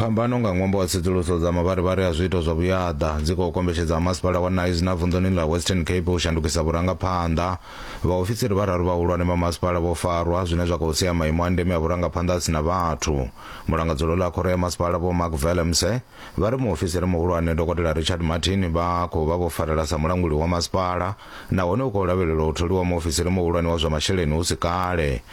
Phambano nga ṅwambo wa tsedzuluso dza mavharivhari a zwiito zwa vhuyaḓa dzi khou kombetshedza masipala wa Knysna vunḓuni ḽa Western Cape u shandukisa vhurangaphanḓa. Vhaofisiri vhararu vhahulwane vha masipala vho farwa, zwine zwa khou sia maimo a ndeme a vhurangaphanḓa a si na vhathu. Mulangadzuloni a khoro ya masipala Vho Mark Vellemse vha ri muofisiri muhulwane Dokotela Richard Martin vha khou vha vho farela sa mulanguli wa masipala nahone u khou lavhelelwa u tholiwa muofisiri muhulwane wa zwa masheleni hu si kale.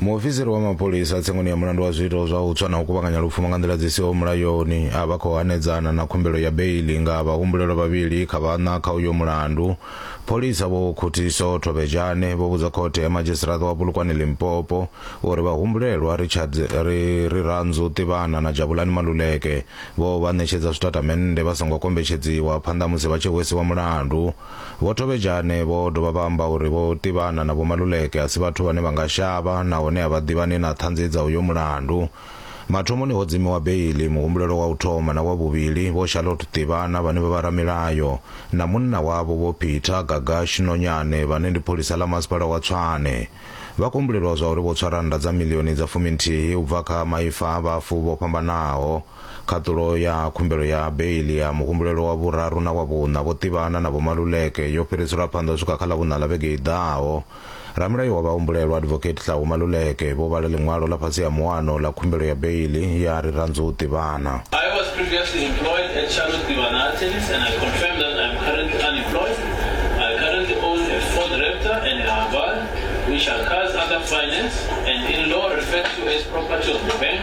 muofisiri wa mapholisa tsengoni ya mulandu wa zwiito zwa u tswa na u kuvhanganya lupfumo nga nḓila dzi siho mulayoni a vha khou hanedzana na khumbelo ya beili nga vhahumbulelwa vhavhili kha vhaṋa kha uyo mulandu pholisa vho khuthiso thovhejane vho vhudza khothe ya madzhisiṱiraṱa wa pulukwane limpopo uri vhahumbulelwa richard ri ri ranzu ṱivhana na jabulani maluleke vho vha ṋetshedza zwitatamennde vha songo kombetshedziwa phanḓa musi vha tshi hwesiwa mulandu Vho Tobejane vho dovha vha amba uri Vho Tivhana na Vho Maluleke a si vhathu vhane vha nga shavha nahone a vha ḓivhani na ṱhanzi dza uyo mulandu. Mathomoni ho dzimiwa beiḽi muhumbulelwa wa u thoma na wa vhuvhili Vho Charlotte Tivhana vhane vha vha ramilayo na munna wavho Vho Peter Gagash Nonyane vhane ndi pholisa ḽa masipala wa Tshwane. Vha khou humbulelwa zwa uri vho tswa rannda dza miḽioni dza fuminthihi u bva kha maifa a vhafu vho fhambanaho. Khaṱulo ya khumbelo ya beiḽi ya muhumbulelwa wa vhuraru na wa vhuṋa vho ṱivhana na Vho Maluleke yo fhiriselwa phanḓa u swika kha Ḽavhuṋa ḽa vhege i ḓaho. Ramulayo wa vhahumbulelwa Advocate Tlhaho Maluleke vho vhala ḽiṅwalo ḽa fhasi ha muano ḽa khumbelo ya beiḽi ya ri Randzu Ṱivhana. I was previously employed at Charlotte Tivana Attorneys and I confirm that I am currently unemployed. I currently own a Ford Raptor and a Haval which are cars under finance and in law referred to as property of the bank.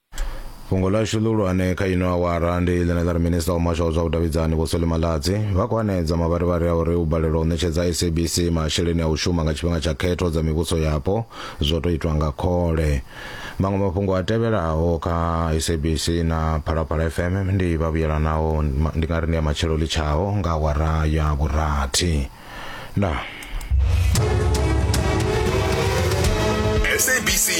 fhungo ḽashu ḽihulwane kha ino awara ndi ḽine ḽa ri minista wa muhasho wa zwa vhudavhidzani vho soli maladzi vha khou hanedza mavharivhari a uri u balelwa u ṋetshedza sabc masheleni a u shuma nga tshifhinga tsha khetho dza mivhuso yapo zwo tou itwa nga khole maṅwe mafhungo a tevhelaho kha sabc na phalaphala fm ndi vhavhuyelanaho ndi nga ri ndi ya matshelo litshaho nga awara ya vhurathi ndaa